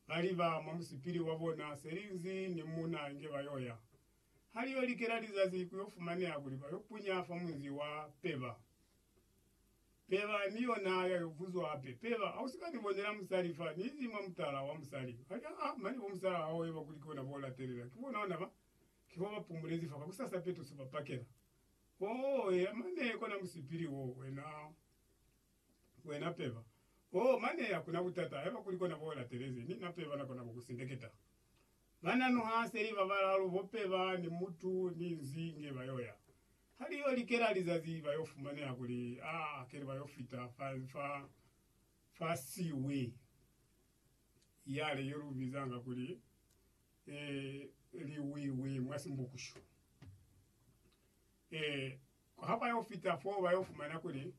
ba liba mwa musipili wa bona selinzi ni muna inge ba yo ya. Ha li yo likela lizazi ku yo fumaneha kuli ba yo punya fa munzi wa Peba. Peba ni yona ya yo buzwa hape, Peba, ha u si ka ni bonela musali fa ni izi mwa mutala wa musali? Ba li, Aa, mane bo musala hao eba kuli ki bona bo latelela, ki bona ona ba, ki fo ba pumulezi fa, kakusasa petuso ba pakela. Oh, eya mane kona musipili wo, wena. Wena peba. Oh, mane hakuna butata, haiba kuli kona bo latelezi, mi na peba na kona ku ku sindeketa. Bana nu ha seli ba balalu bo peba ni mutu ni nzi nge ba yo ya. Ha li yo likela lizazi ba yo fumaneha kuli, ah, hakeli ba yo fita fa, fa, fa siwi yale ye lu bizanga kuli, eh, liwiwi mwa Simbukushu. Eh. Ha ba yo fita foo, ba yo fumana kuli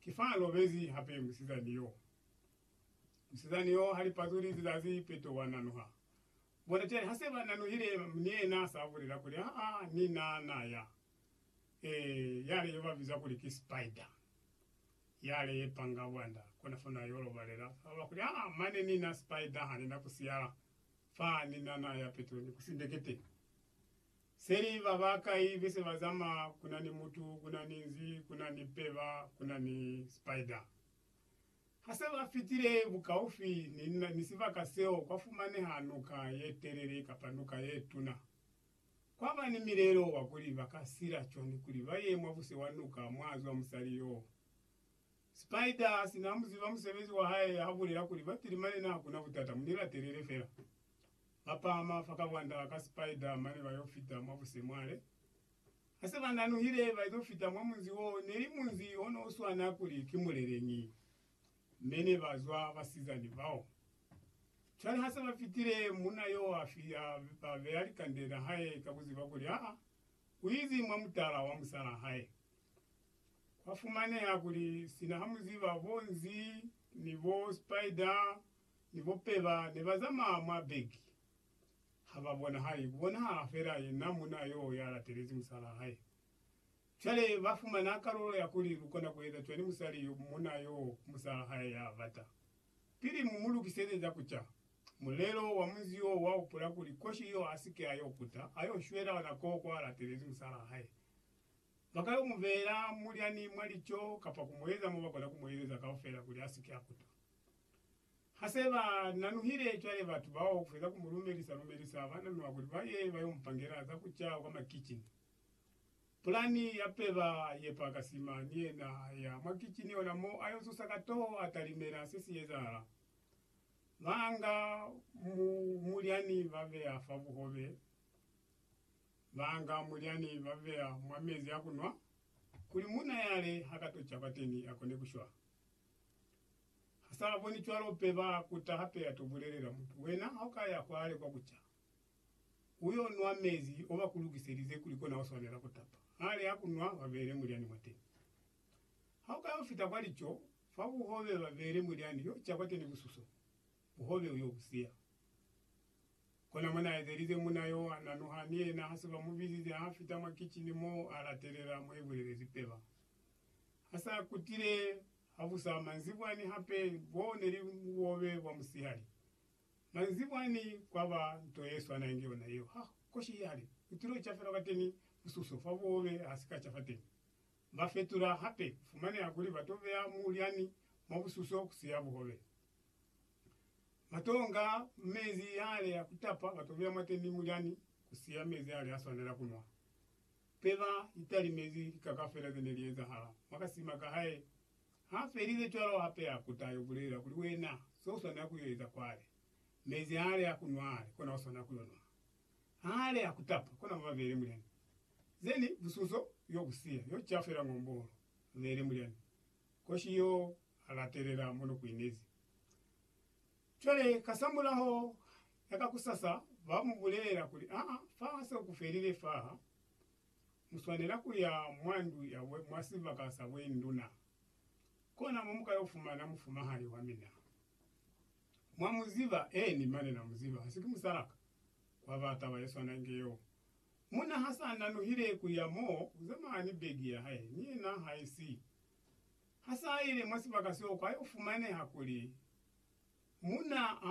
ki fa a lobezi hape musizani yo. Musizani yo ha li pazuli lizazi peto wa nanuha. Bona cwale, ha se ba nanuhile, ni yena sa bulela kuli, Aa, ni na na ya. Ee, yale yo ba biza kuli ki spider, yale ye panga bwanda, kona fo na yo lobalela. Sa ba kuli, Aa, mane ni na spider, ha ni na ku siyala fa, ni na na ya peto ni ku sindeketeni. Seli ba ba kai be se ba zamaya kuna ni mutu kuna ni nzi kuna ni peba kuna ni spider. Ha se ba fitile bukaufi ni ni sibaka seo kwa fumaneha nuka ye telele kapa nuka ye tuna. Kwa ba ni milelo wa kuli ba ka sila cwani kuli ba ye mwa buse wa nuka mwa zwa musali yoo. Spider asi na muziba musebezi wa hae ha bulela kuli ba pili mane naha kuna butata muni latelele fela. Ba pahama fa kabwanda ka Spider mane ba yo fita mwa busemwale. Ha se ba nanuhile ba izo fita mwa munzi wo neli munzi o no swana kuli ki muleleñi. Me ne ba zwa basizani bao. Cwale ha se ba fitile, munna yo a fi a ba beya likande na hae ka kuziba kuli aa u izi mwa mutala wa musalaa hae. Kwa fumaneha kuli sina ha mu ziba bo nzi ni bo spider ni bo peba ne ba zamaya mwa beki, ha ba bonahali, ku bonahala fela yena munna yoo ya latelezi musalaa hae. Cwale ba fumana kalulo ya kuli lu kona ku eza cwani musali yo, munna yoo ku musalaa hae ya bata. Pili mu mu lukiseze za ku ca, mulelo wa munzi woo wa hupula kuli koshi yoo a si ke a yo kuta, a yo shwela ona koo kwa latelezi musalaa hae. Ba ka yo mu beela mulyani mwa lico kapa ku mu eza mo ba kona ku mu ezeza kaufela kuli a si ke a kutwa. Ha se ba nanuhile cwale batu bao ku feza ku mu lumelisa-lumelisa, ba nanuha kuli ba ye ba yo mu pangela za ku ca kwa makicini. Pulani ya peba ye pa ka sima, ni yena a ya mwa kicini ona mo a yo zusa ka toho a talimela se si ezahala. Ba nga mulyani ba beya fa buhobe Banga mulyani babeya mwa mezi a kunwa kuli muuna yale hakatoca kwateni akone kushwa. Hasaaboni cwalo pe baakuta hape atobulelela mutu, Wena haukaya kwale kwa kuca, uyo nwa mezi obakulukiselize kuli kona uswanela kutapa. Hali akunwa babeele mulyani mwateni. Haukayo fita kwa lico, fabuhobela babeele mulyani yoca kwateni bususo. Buhobe u yo bu siya. Kona mwa na ezelize muna yo, a nanuha, ni yena ha se ba mu bizize, ha fita mwa kicini mo, a latelela mo i bulelezi peba. Ha sa kutile habusa manzibwa ni hape, bo ne li buhobe bwa musihali. Manzibwa ni kwa ba nto ye swana inge yona yeo. Ha koshi i hali, u tilo ca fela kwateni mususo fa buhobe ha si ka ca fateni. Ba fetula hape, ku fumaneha kuli ba to beya mulyani mwa bususo ku siya buhobe. Matonga mezi yale ya kutapa batobela mwateni mulyani kusiya mezi yale aswanela kunwa. Peba italimezi lika kafela zene li ezahala mwakasima kahae. Ha felize cwalo hape ya kuta yo bulela kuli wena so uswanela kuyo eza kwale. Mezi ale a kunwa ale kona uswanela kuyo nwa. Hale ya kutapa kona baba bele mulyani. Zene busunso yo kusiya yo cafela ng'ombolo. Bele mulyani. Koshi yo a latelela mo no kuinezi. Cwale kasamulaho ya kakusasa ba mu bulelela kuli, Aa, fa se ku felile faha, mu swanela ku ya mwa ndu ya bwe, mwa sibaka sa bwenduna. Kona mo mu ka yo fumana mufumahali wa mina. Mwa mu ziba? Eeni, mane na mu ziba. Ha si ki musala ka? Kwa ba taba ye swana inge yeo. Munna ha sa nanuhile ku ya moo, u zamaya ni begi ya hae, ni yena ha isi. Ha sa ile mwa sibaka seo, kwa yo fumaneha kuli munna ha